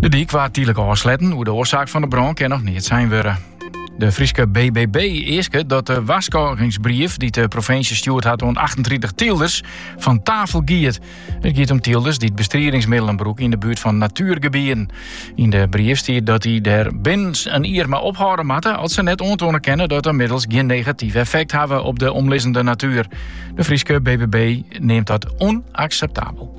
De dyk waard tydlik ôfsletten. Oer de oarsaak fan de brân kin noch neat sein wurde. De Fryske BBB easket dat de warskôgingsbrief dy't de provinsje stjoerd hat oan achtentritich tylders fan tafel giet. It giet om tylders dy't bestriedingsmiddelen brûke yn de buert fan natuergebieden. Yn de brief stiet dat dy der binnen in jier mei ophâlde moatte as se net oantoane kinne dat de middels gjin negatyf effekt hawwe op de omlizzende natuer. De Fryske BBB neamt dat ûnakseptabel.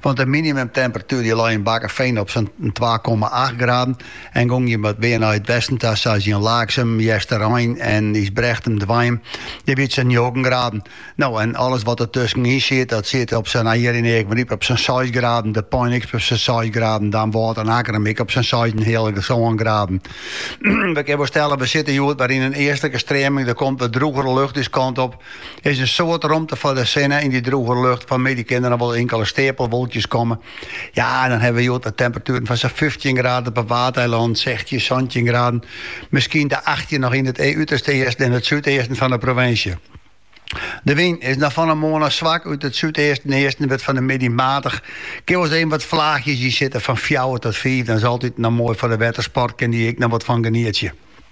Want de minimumtemperatuer die lei yn Bakkefean op sa'n twa komma acht graden en gongen je wat mear nei it westen ta, sa tsjin Laaksum, Jousterein en Ysbrechtum derhinne. Dêr wie it sa'n njoggen graden. No, en alles wat der tuskenyn siet, dat siet op sa'n, Ie en Eagmaryp, op sa'n seis graden, De Pein ek op sa'n seis graden, Damwâld en Akkrum ek op sa'n seisenheale sân graden. We kinne wol stelle, we sitte hjoed wer yn in eastlike streaming, der komt wat droegere lucht ús kant op. is in soad romte foar de sinne. Yn dy droege lucht fan middei kinne noch wol inkele steapelwolkjes komme. Ja, dan ha we hjoed wat temperatueren fan sa'n 15 graden op 'e Waadeilannen, 16, 17 graden. Miskien de 18 noch yn it uterste easten en it súdeasten fan 'e provinsje. De wyn is noch fan 'e moarn swak út it súdeasten en easten, wurdt fan 'e middei maatich. Kin alris even wat flaachjes yn sitte fan fjouwer tot fiif. Dat is altyd noch moai foar de wettersport, kin dy ek noch wat fan genietsje.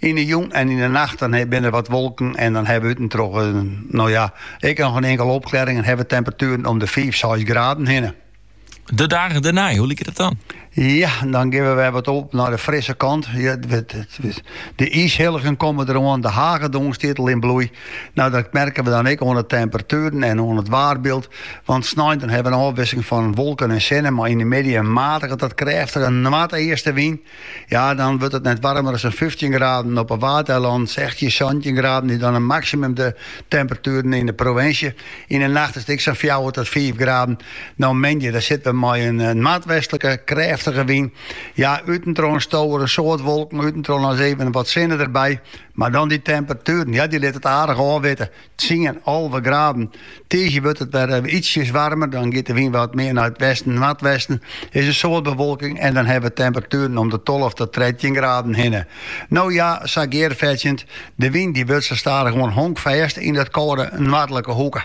Yn 'e jûn en yn 'e nacht dan binne der wat wolken en dan hawwe we út en troch no ja, ek noch in inkele opklerring en hawwe we temperatueren om de fiif, seis graden hinne. De dagen dêrnei, hoe liket it dan? Ja, dan gean we wer wat op nei de frisse kant. Ja, de iishilligen komme der oan, de hagedong stiet al yn bloei. No, dat merke we dan ek oan de temperatueren en oan it waarbyld. Want snein dan hawwe we in ôfwikseling fan wolken en sinne, mei yn de middei in matige oant krêftige noardeastewyn. Ja, dan wurdt it net warmer as in fyftjin graden, op 'e Waadeilannen sechstjin, santjin graden is dan de maksimumtemperatueren yn de provinsje. Yn de nacht is it ek sa'n fjouwer tot fiif graden. No moandei, dan sitte we mei in noardwestlike krêftige wyn. Ja, út en troch stowe der in soad wolken, út en troch ris even wat sinne derby. Mar dan dy temperatueren, ja dy litte it aardich ôfwitte. Tsien alve graden. Tiisdei wurdt it wer ytsjes waarmer, dan giet de wyn wat mear nei it westen-noardwesten. Is in soad bewolking en dan hawwe we temperatueren om de tolve, trettjin graden hinne. No ja, sa gearfetsjend, de wyn dy wurdt sa stadichoan honkfêst yn dy kâlde noardlike hoeke.